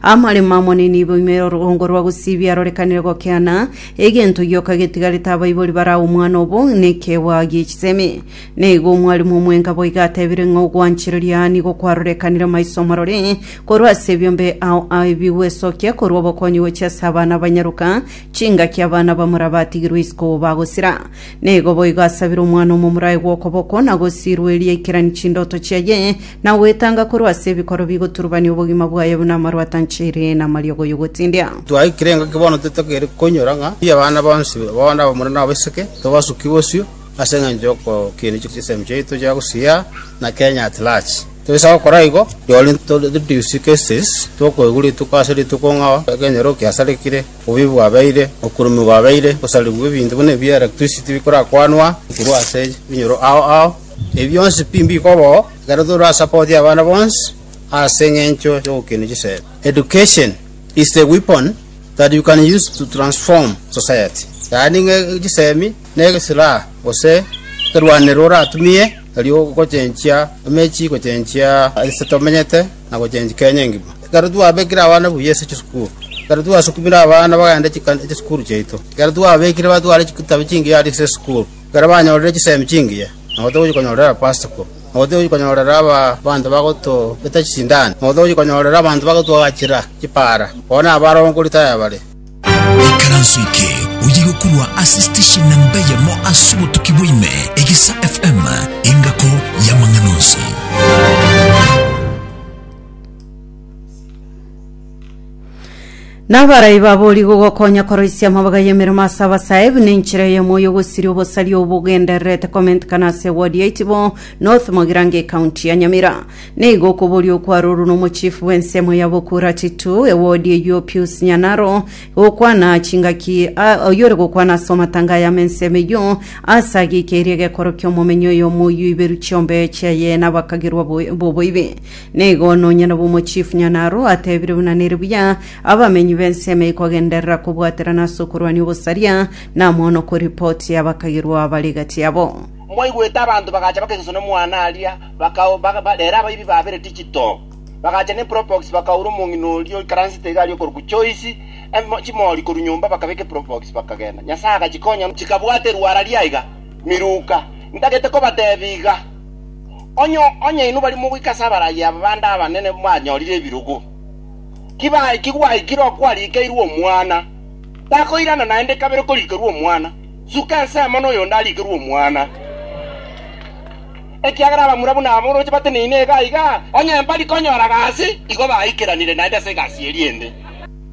Amaremo amonene ibo ime orogongo rwa gosibia rorekanire gokeana, egento gioka getigarete abaibori barao omwana obo nekeegwa gie chisemi. Naigo omwarimu omwenga boiga atebire ng'a ogwanchereria aa nigo kwarorekanire maiso amarore, korwa ase ebiombe ao a ebigwe esokia korwa obokonyi gochia ase abana abanyaroka, chingaki abana bamura batigirwe isiko bagosira. Naigo boigo asabire omwana omomura aegwe okoboko na gosirwa eria aikeranie chindoto chiaye, na goetanga korwa ase ebikoro bigoturubania obogima bwaye buna amaru atancheire na amariogo y'ogotindia. Twaikire engaki bono titokeire koinyora ng'a mbuya abana bonsi bono abamura na abaiseke tobasuki bosio ase engencho y'okokiina chisemi chiaito chia gusiyia na Kenya at large. Toisa gokora igo, rirorio to reduce cases tokoigwa rituko ase rituko ng'a ekenyoro kiasarekire, obuya bwabeire, okurumigwa gwabeire, gosarigwa ebinto buna ebi electricity bikorakwanwa korwa ase ebinyoro ao ao. Ebi bionsi pi mbikoba oo, ekero tore ase ababoti abana bonsi ase engencho y'ogokenda chisemi. Education is the weapon that you can use to transform society, yaani ng'a chisemi negesiraha gose ekerwanero oratumie erio gochenchia emechie gochenchia ase tomenyete na gochenchia Kenya engima. Ekero twabekire abana buya ase chisukuru, ekero twasukumire abana bagende chikani chisukuru chiaito, ekero twabekire batware chitabu chingiya ase chisukuru. Ekero banyorire chisemi chingiya, nabo togochia konyorera Pasaka, nabo togochia konyorera abanto bagotobeta chisindani, nabo togochia konyorera abanto bagotwagachera chipaara, bono abare oo nkori tayabare. Ekaranso eke oyo igokorwa ase station namba eyemo ase obotuki bwa ime, Egisa FM, engako y'amang'ana onsi. Nabarai babori gogokonya koroisia amabaga y'emeremo ase abasae buna enchera eyemo y'ogosiria obosari obogendererete komentekana ase ewodi ya Itibo North Mogirango ekaunti ya Nyamira. Nigo okoboria okwarorwe n'omochifu bw'ensemo ya Bokura Titu ewodi eyio Pius Nyanaro gokwana chingaki a- oyio ore gokwana ase amatanga aya amensemo eyio ase agikeirie egekorokio omomenyi oyomo oyio iberu chiombe chiaye nabakagerwa bo- boboibi. Nigo nonyene bw'omochifu Nyanaro atebire buna nere buya, abamenyi b'ensemo eye kogenderera kobwaterana ase okorwania obosaria, namono koripoti abakagerwa bare gati yabo. Mwaigwete abanto bagacha bakesusa nomwana aria, bakau, baka, ba, rero abaibi babere digital bagacha ne probox bakaura omong'ina oria oikaransete iga aria okorokwa Joyce, em, chimori korwa nyomba bakabeka eprobox bakagenda. Nyasaye agachikonya chikabwata erwara riaiga miruka. Ntagete kobatebia iga. Onye, onye inwe bari mogoika ase abaragi aba bande abanene mwanyorire ebirogo, kibae kigwaikire okwarikeirwe omwana, takoirana naende kabere korikerwa omwana, suka ensemo noyonde arikerwe omwana. Ekiagera abamura buna aba oroche bateneine iga iga, onye mbari konyora gasi, igo baikeranire naende ase egasi eria ende.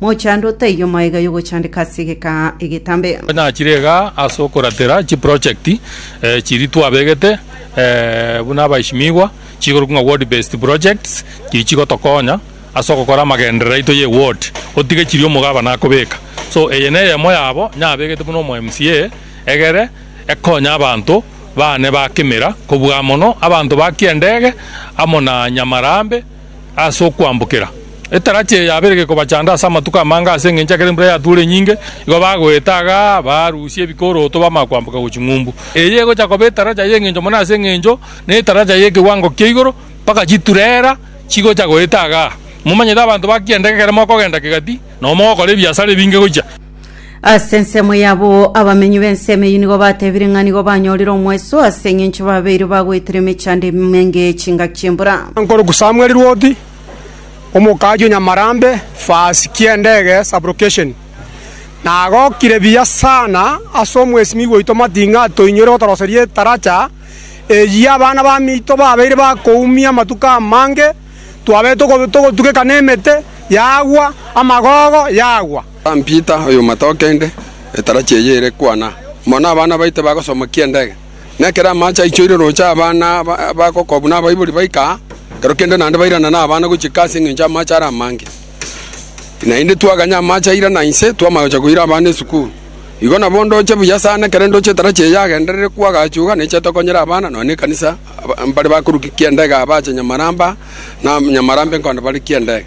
Mochando otaiyo maiga yogochandeka ase egekaa egetambe. Nachire iga ase okoratera chiprojekti chiria twabegete buna abaishimiigwa, chikorokwa ng'a Ward Based Projects, chiria chigotokonya ase ogokora amagenderero aito ye ward, otige chiria omogabane akobeka. So eye neyemo yabo nyabegete buna omo MCA egere ekonye abanto bane ba Kimira kobua mono, abanto ba Kiendege amo na Nyamarambe. ase okwambokera etarachi eye yabeire gekobachanda ase amatuko amange ase engencho ekero embura yatuure enyinge igo bagoeta iga barusia ebikoroto bamanya kwamboka gochia ng'umbu. Eye egocha koba etaracha y'engencho mono ase engencho netaracha y'ekewango kia igoro mpaka chiturera chigocha goeta iga. Momanyete abanto ba kianda ekero mogokenda kegati nabo mogokora ebiasara ebinge gochia. Ase ensemo yabo abamenyi b'ensemo eyio nigo batebire ng'a nigo banyorire omweso ase eng'encho babeire bagoetera emechando emenge chingaki chi'embura. Nkoruku Samuel Rwoti, omokaji o Nyamarambe, Fasi ki'endege, Sub-location, nagokire buya sana ase omwesimigwa oito Mating'a atoinyorire gotoroseria etaracha eyio abana bamito babeire bakoumia amatuko amange, twabeire togotugeka nemete yagwa, amagogo yagwa. Simon Peter, oy'omwata o kende, etarachi eye ere kwana mono nabana baito bagosomokia endege, na ekero amaache aichoire rooche abana bagokwa buna abaibori baika aa, ekero kende naende bairana nabana gochika ase engencho amaache are amange. Naende twaganya amaache airana inse, twama gocha koira abana esukuru. Igo nabo ndoche buya sana, ekero ndoche etarachi eye yagenderere kwagachuga, neche tokonyera abana nonya nekanisa mbare bakorukia endege aa bache Nyamaramba, na Nyamaramba enkonde barukie endege.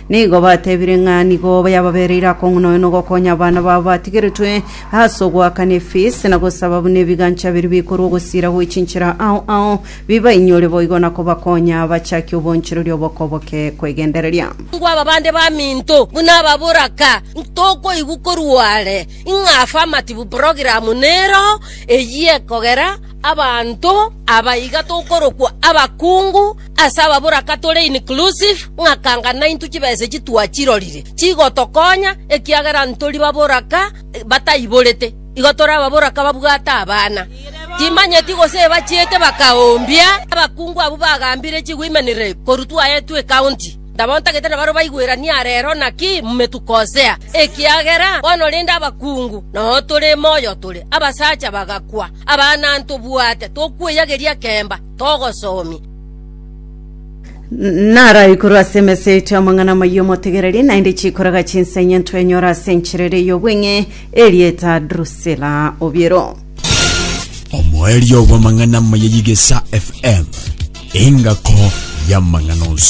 Nigo batebire ng'a nigo yababereire akong'una oyo nogokonya abana babo batigeretwe ase ogoakana efees na gosaba buna ebigancha biria bikorwa ogosiira gwe chinchera ao ao bibainyore boigo na kobakonya bachakie obonchoreria obokoboke kwegendereria. Ngwa aba bande baminto buna aba boraka ntokoigwa korwa are, ng'a afe amatibu program nero eyio ekogera abanto aba iga tokorokwa abakungu, Ase ababoraka tore inclusive, ng'aka anga naintwe chibesegi twachirorire chigotokonya ekiagera ntori baboraka bataiborete. Igo tore ababoraka babwate abana, timanyeti gose ebachiete bakaoombia abakungu abwo bagambire chigoimanire korwa twaetwe ecounty. Nabo ntagete nabare baigweranie arero naki mmetukosea, ekiagera bono rende abakungu noyo tore moyo tore abasacha bagakwa, abana ntobwate tokweyageria kemba. togosoomia. Naraikorwe ase emesa yaito y'amang'ana amayia omotegereri, naende chikoraga chinsa enye ntwenyore ase enchera ere y'obweng'e erieta Drusila Obiero. omoerio bw'amang'ana amaya y'egesa FM, engako y'amang'ana onsi.